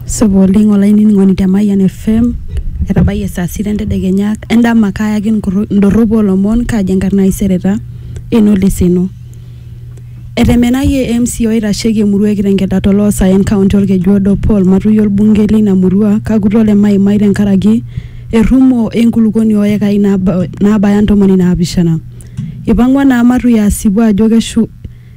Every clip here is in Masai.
Supa oleng olainining'oni te Mayian FM etabayie saa sita entedekenya endama kaayaki nkurru- indorropu oolomon kaaji enkarna ai Sereta Eno Leseno. Etemenayie MC oitasheki emurua e Kitengela to loosaen kaunti olkeju odo Paul Matui olbungei leina murua Kakuto le Maimai tenkaraki errumo e nkulukuoni oo yekai naaba- naabaya ntomoni naapishana. Eipang'ua naa Matui asipu ajo keshu-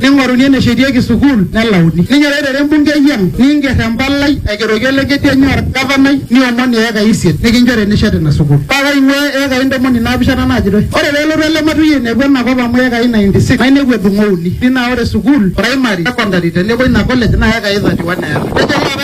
Neing'oruni eneshetiki sukuul nelauni. Ninyoraitere embungei ang niinger empalai aigeroki olekedi enye olgavanai niomon iekai isiet nikinchori enishet ina sukuul. Paa kaing'uaa iekai ntomoni naapishana naajitoi. Ore pee elotu ele matui ainepu ena kop amu iekai 96 nainepu edung'o uni. Dii naa ore sukuul, praimari, sekondari tenebo ina kolej naa iekai 31 eeta. Nejo ilo apa ele.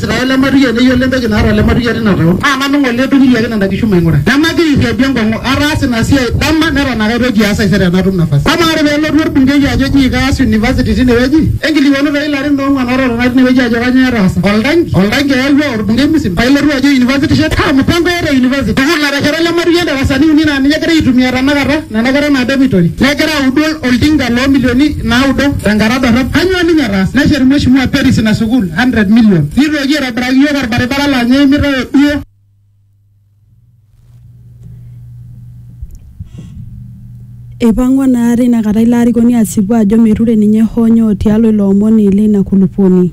Israel lematukia neyiolo entoki naata olematukia tina taon, naa nanu ng'ole odukunyiaki nena kishu maing'ura. Nemagira airriadu enkong'u, ataasa ina siai dama neton ake aitoki aas taisere tenatum nafasi. Amaa ore pee elotu olbungei ajo eji kaas university tine wueji, enkilikwanu too ilarin oong'uan oototona tine wueji ajo kanyoo etaasa. Oltanki? Oltanki eyawua olbungei Musim paa ilotu ajo university ishet? Kaa mupango eeta e university? Amu natesheta olematukia indarasani uni naa ninye egira aitumia tenakata nena kera naa dormitory negira audu oltinka loo milioni naudo tenkata dorrop. Kanyoo ninye etaasa? Neshet Mheshimiwa Peris ina sukuul 100 million. Nitoki aitobiraki iyiook olbaribara laa ninye eimita oduo. Eipang'ua naa teina kata ilo arikoni asipu ajo meture ninye hoo nyoo tialo ilo omoni leina kulupuoni.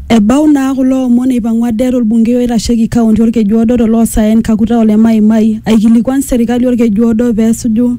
Ebau naa kulo omon eipang'ua det olbungei oitasheki kaunti Olkejuodo to loosaen Kakuta Ole Maimai aikilikuan serkali Olkejuodo pee esuju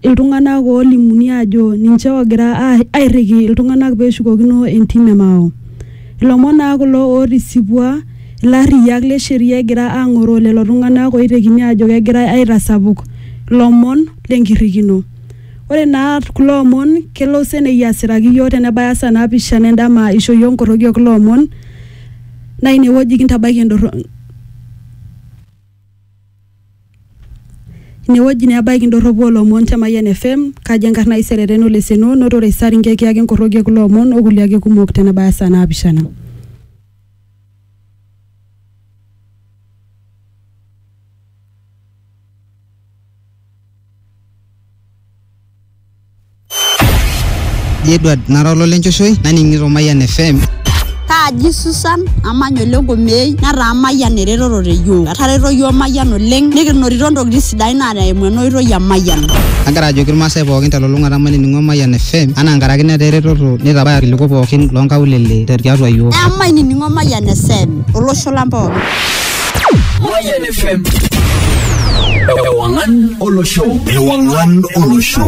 iltung'ana oolimuni aajo ninche oogira airriki iltung'ana pee eshukokino entim e Mao. Ilomon naa kulo ootisipua ilarriyiak le sheria egira aang'oroo lelo tung'ana ooitekini aajo kegirai aitasapuk lomon le nkirrikino. Ore naa kulo omon kelo senei asiraki iyiook tenebaya saa naapishana e ndama eisho iyiook nkoroki o kulo omon naa ine wueji kintabaiki Inewueji naa ebaiki indorropu oolomon te Mayian FM, kaji enkarna ai Sereten Oleseno, notore Isaringe kiyaki enkorroki e kulo omon o kulie ake kumok te nebaya saa naapishana. Kaji Edward nara ololenchoshoe naning'ito Mayian FM. Kaaji Susan amanya ole Nkomei netaa Mayian eretoto te yiok. Etareto yiok Mayian oleng nikinotito ntokitin sidain naa eimu ena oitoi e Mayian. Agira ajoki irmaasai pookin telulung'ata mainining'o Mayian FM anaa nkaraki netaa eretoto neitabaya irkiliku pookin loonkaulele tiatua yiok. Emainining'o Mayian FM olosho lang pookin. Mayian FM. Ewang'an olosho. Ewang'an olosho.